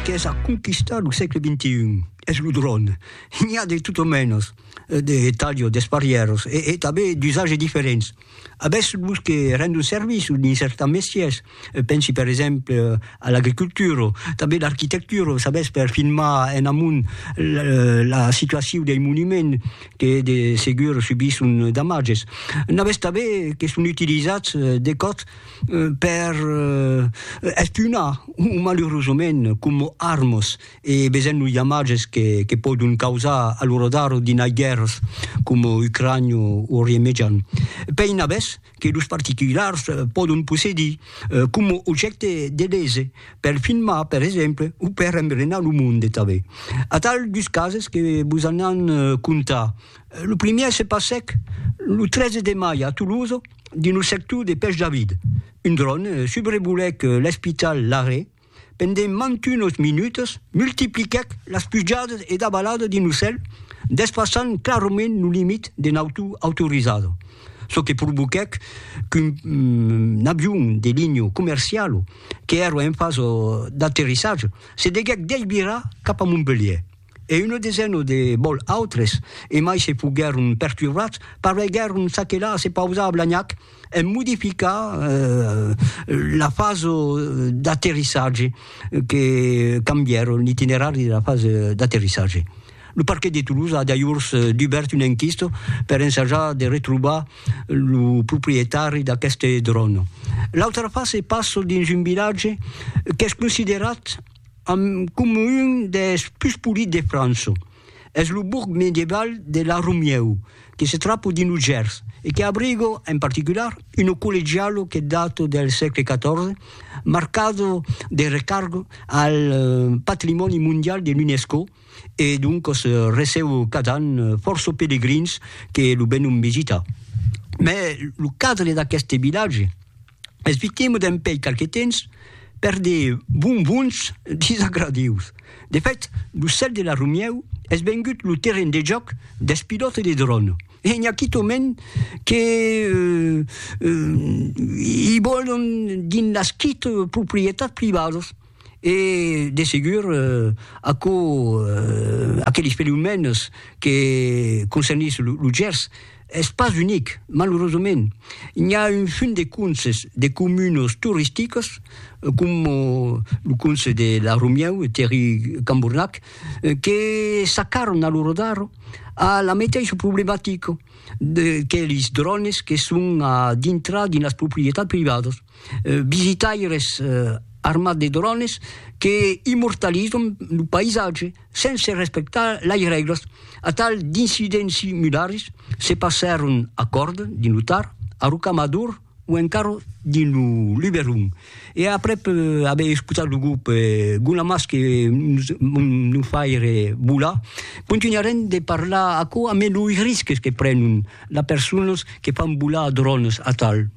qu'es a conquistar lo sègle XXI es lo dròn. N'i a de tot o mènos, de talho, d'esparièros e tanben d'usatge diferents. Avètz los que rendon servici dins certans mestièrs, pensi per exemple a l'agricultura, tanben l'arquitectura, sabètz per filmar en amont la situacion dei monuments que de segur subisson damatges. N'avètz tanben que son utilizats de còps per espunar o malurosament coma armas e vesent los damatges que, que pòdon causar a lo radar d'inai guèrras coma Ucrània o Orient Mejan. Pei navès que los particulars pòdon possedir coma objècte de lese per filmar per exemple o per embrenar lo monde tanben. Atal dus cases que vos anàn contar Lo primièr se passèc lo 13 de mai a Toulouse dins lo sector de Pèch David. Un dròn subrevolèc l'espital Larrey pendent mantunos minutas, multipliquèc las pujadas e davaladas dins lo cèl, desfasant clarament lo limit de nautor autorizada, çò que provoquèc qu'un avion de linha comerciala, qu'èra en fasa d'aterrissatge, se deguèc desvirar cap a Montpelhièr. e una desena de bòl autres, e mai se foguèron perturbats, pareguèron s'aquelar a se pausar a Blagnac en modificar la fasa d'aterrissatge, que cambièron l'itinerari de la fasa d'aterrissatge. Lo parquet de Toulouse a dajors dubèrt una enquista per ensajar de retrobar lo proprietari d'aqueste dròn. L'autra fasa passa dins un vilatge qu'es considerat, Amb coma un des pus polits de França. Es lo bourg medieval de La Romieu, que se trapa dins lo Gers e que abriga, en particular, una collegiala que data del sègle XIV, marcada de recarga al patrimòni mondial de l'UNESCO e doncas receba cada an fòrça pelegrins que lo venon visitar. Mai lo cadre d'aqueste vilatge. Esvitemo dempèi qualque temps per de bonbons disagradius. De fèt, lo cèl de la Romièu es vengut lo terren de jòc dels pilòtes de dròn e n'i a quitòment que i vòlon dins las quite proprietats privadas. e de segur aquò aqueles fenomèns que concernís lo Gers es pas unic, malurosament n'i a un fum de conses de comunes toristicas coma lo conse de la Romieu e Terri Cambornac que s'acarran a lo rodar a la meteissa problematica de que lis drònes que son a dintrar dins las proprietats privadas. visitaires armats de drones que immortalizan lo païsatge sense respectar las règlas. Atal d'incidents similars se passèron a Còrd, dins lo Tar, a Rocamador o encara dins lo Luberon. E aprèp aver escotat lo grop Guna Mas que nos fa aire volar, contunharem de parlar aquò ambe los risques que prenon las personas que fan volar drones atal.